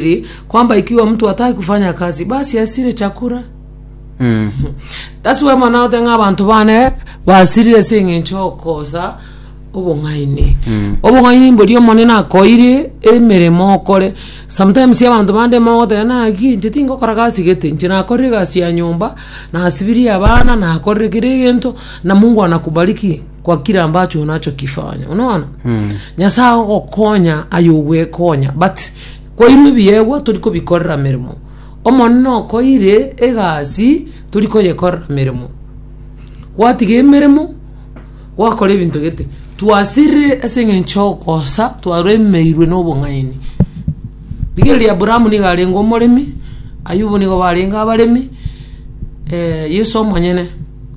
Ri, kwamba ikiwa mtu hataki kufanya kazi basi asire chakula Mm. that's why mwana ote ng'a abantu bane basirire ase eng'encho okosa obong'aini Mm. obong'aini mbori omonene akoire emeremo okore sometimes abantu bande mogoteba naki inche tingokora gasi gete inche nakorire egasi ya nyomba nasibirie abana nakorire kera egento na mungu anakubariki kwa kila ambacho unachokifanya unaona Mm. nyasae agokonya aye ogwekonya but Kwairwe ebiegwa tori kobikorera meremo. Omonene okoire egasi tori koyekorera meremo. Gwatiga emeremo gwakora ebinto gete. Twasirire ase eng'encho y'okosa twaremeirwe nobong'aini. Rigereria Abraham nigo arenge omoremi, Ayubu nigo barenge abaremi, Yeso omonyene,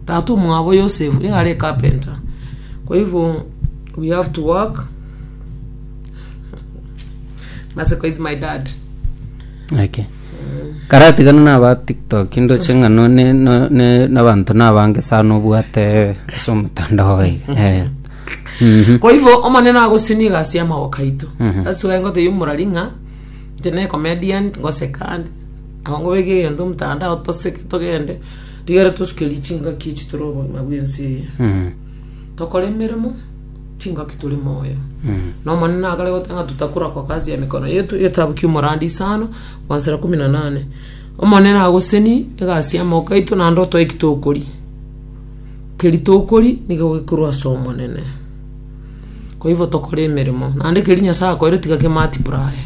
tata omwabo Yosefu nigo are ecarpenter. Kwa hivyo we have to work. Maseko is my dad. Okay. karatigana naba tiktok ndoche ng'a no- ne- no- ne- nabanto nabange sana obwate ase omotandao oye Eh. Mhm. Kwa hivyo omonene agosini egasi y'amaboko aito. Mhm. That's why ngotebi omorari ng'a inche ne comedian ngoseka ande. Abang'u beke egento omotandao toseke togende rigere tosukerie chingaki echi tore obogima bw'ense eye. Mhm. Tokore emeremo chingaki tore moyo na omonene akare goteba ng'a tutakorakwa kazi ya mikono yetu egetabu kia omorandi isano mansera kumi na nane omonene agoseni egasi y'amaboko aito naende otoe eki tokori keri tokori nigo gekorwa ase omonene koigo tokore emeremo naende keri nyasae akoeire tiga ke multiply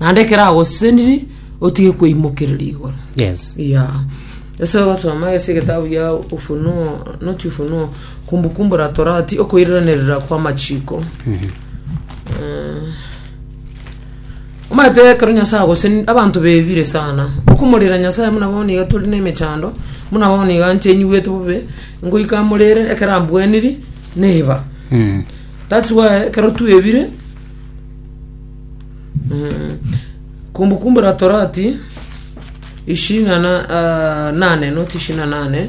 naende ekero agoseseniri otige koimokereria igoro yes yeah ase ogosoma ase egetabu gia ufunuo not ufunuo Kumbukumbu la Torati, okoiranerera kw'amachiko. Eh, omanyete ekero nyasaye gose ni- abanto bebire sana okomorera nyasaye muna bono iga tore nemechando muna bono iga nche nyigwete bobe ngoika morere ekero ambweniri neba Mm. thats why ekero twebire mm, kumbukumbu la torati ishirini na na- ah, nane not ishirini na nane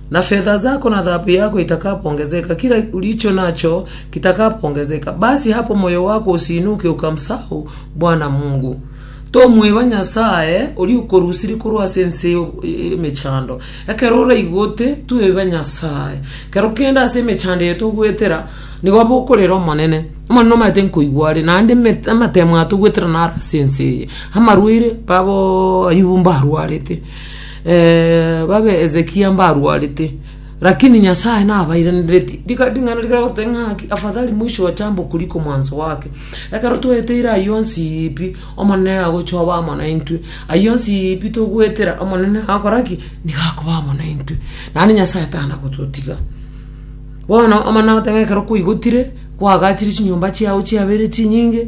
Na fetha zako na thahabu yako itakapongezeka, kira ulicho nacho kitakapongezeka. Basi hapa moyo wako usiinuke ukamsahau Bwana Mungu. Tomweba Nyasaye oria okorusirie korwa ase ense emechando. Ekero oraigote, tweba Nyasaye. Kero kende ase emechando eye togoetera, nigo aba okorera Omonene. Omonene omanyete nkoigwa are, naende amatemo atogoetera naro ase ense eye. Amarwaire, babo Ayubu mbarwarete. eh, babe Hezekia mbarwarete, lakini Nyasaye nabairenereti. Rika ring'ana rikare gototeba ng'a haki, afadhali mwisho wa chambo kuliko mwanzo wake. Ekero tweteire ayio onsi ipi, Omonene agochoba amo naintwe. Ayio onsi ipi togwetera, Omonene agakora ki? Nigo akoba amo naintwe. Naende Nyasaye tana gototiga. Bono Omonene agoteba ng'a ekero kwaigotire, kwagachire chinyomba chiao chiabeire chinyinge,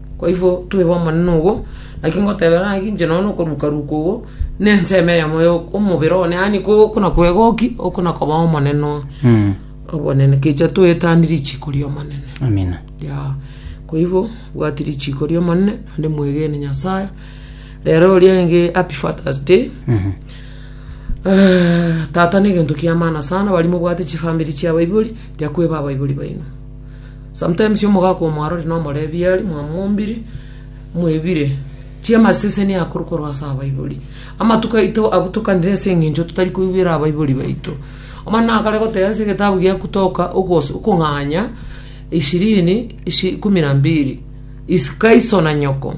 Naboigo toiba omonene ogo, naki ngotebera ng'aki inche nonya na okorukaruka ogo, na ensemo eyemo ya omobere one, yaani ko okona kwegoki, okona koba omonene oo. Obonene, kecha toetanie richiko ri'omonene. Amina. Yao. Kwa hivyo bwati richiko ria omonene naende mwegene nyasaye rero rienge happy fathers day Eh, tata ne egento kia maana sana bari mobwate chifamiri chia abaibori riakweba abaibori baino Sometimes omogaka omwarori nomorebie aria mwamombire mwebire chiamaseseni akoru korwa ase abaibori. Amatuko aito abutokanire ase eng'encho totari koigwera abaibori baito. Omwana nakare goteba ase egetabu gia Kutoka ogos okong'anya ishirini ishi kumi na mbili is kaiso na nyoko.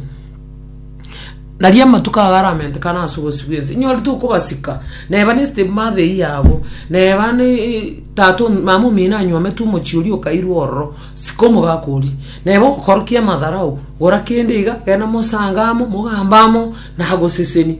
Naria amatuko ago aramentekane ase obosio bw'ense, inyorete okobasika, neba ne step mother eyio abo, neba ne tata omi- mama omino anyometwe omochie oria okairwe ororo, sika omogaka oria, neba ogokorokia amatharao, gora kende iga, genda mosanga amo, mogambe amo, nagoseseni.